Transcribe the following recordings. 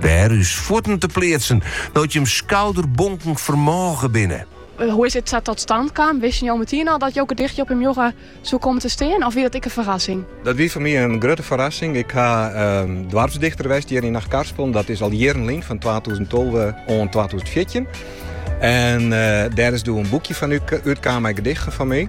Wêr ús fuotten te pleatsen no't jim skouderbonken fermôge binne. Hoe is it sa tot stand kaam? Wisten jo meteen al dat jo gedicht hjir op in muorre soe kommen te stean of wie dat ek in ferrassing? Dat wie foar my in grutte ferrassing. Ik ha ehm, doarpsdichter west hjir yn Achtkarspelen. Dat is al jierren lyn, fan 2012 oant 2014. En eh, dêr is doe in boekje fan útkaam mei gedichten fan my.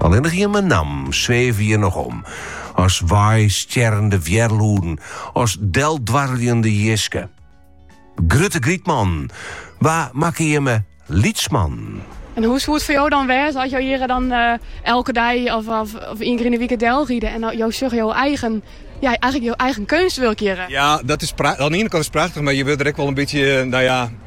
Allinnich jimme nammen sweve hjir noch om, as weistjerrende wjerlûden, as deldwarreljende jiske. Grutte Grytman, wa makke jimme lytsman? En hoe soe it foar jo dan wêze as jo hjir dan eh, elke dei of, of, of ien kear yn de wike del ride en jo sjogge jo eigen ja, eigenlik je eigen keunstwurk hjir. Ja, dat is oan de iene kant is prachtich, mar je wurde der ek wol in bytsje, eh, no ja,